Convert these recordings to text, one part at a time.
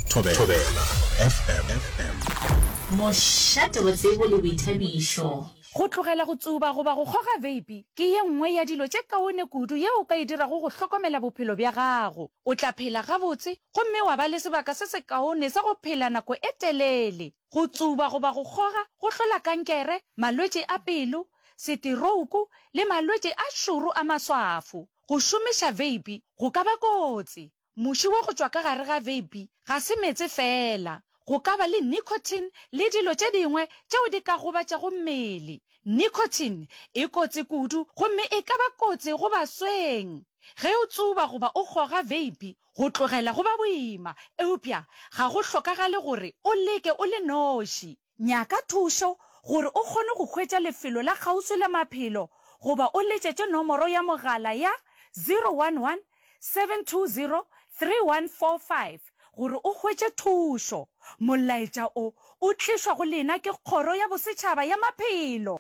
Thobela, Thobela FM. Mošate botsebo le boithabišo. Go tlogela go tsuba goba go kgoga veipi ke ye nngwe ya dilo tše kaone kudu yeo o ka e dirago go hlokomela bophelo bja gago. O tla phela gabotse gomme wa ba le sebaka se sekaone sa go phela nako e telele. Go tsuba goba go kgoga go hlola kankere, malwetši a pelo, seterouku le malwetši a šoro a maswafo. Go šomiša veipi go ka ba kotsi. Muši wo go tšwa ka gare ga veipi ga se meetse feela. Go ka ba le nicotine le dilo tše dingwe tšeo di ka gobatšago mmele. Nicotine e kotsi kudu gomme e ka ba kotsi go basweng. Ge o tsuba goba o goga veipi, go tlogela go ba boima. Eupša ga go hlokagale gore o leke o le noši. Nyaka thušo gore o kgone go hwetša lefelo la kgauswi la maphelo goba o letšetše nomoro ya mogala ya 011 720 3145 gore o hwetše thušo. Molaetša o o tlišwa go lena ke Kgoro ya Bosetšhaba ya Maphelo.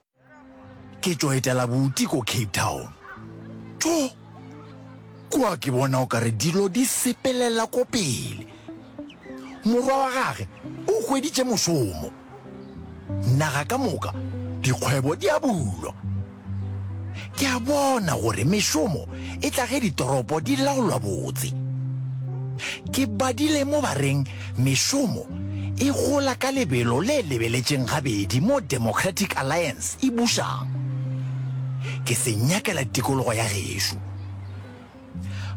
Ke tšo etela bouti ko Cape Town. Tjo! Kua ke bona o ka re dilo di sepelela ko pele. Morwa wa gage o hweditše mošomo. Naga ka moka dikgwebo di a bulwa. Ke a bona gore mešomo e tla ge ditoropo di laolwa botse. Ke badile mo ba reng Mešomo e gola ka lebelo le lebeletšeng gabedi mo Democratic Alliance e bušang. Ke se nyakela tikologo ya gešo.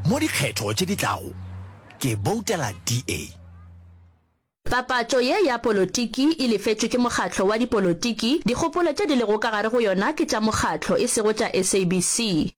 Mo dikgetho tše di tlago ke boutela DA. Papatšo ye ya polotiki e lefetšwe ke mokgatlo wa dipolotiki, dikgopolo tše di lego ka gare go yona ke tša mokgatlo e sego tša SABC.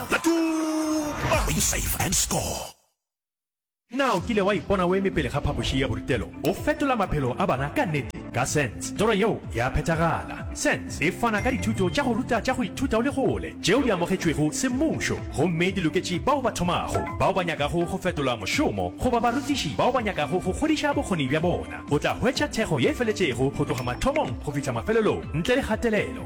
Latuba! Win Save and Score! Na o kile wa ipona o eme pele ga phapoši ya borutelo? O fetola maphelo a bana ka nnete ka SENS. Toro yeo ya phethagala. SENS e fana ka dithuto tša go ruta tša go ithuta o le kgole tšeo di amogetšwego semmušo gomme di loketše bao ba thomago, bao ba nyakago go fetola mošomo goba barutiši bao ba nyakago go kgodiša bokgoni bja bona. O tla hwetša thekgo ye feletšego go tloga mathomong go fihla mafelelong ntle le kgatelelo.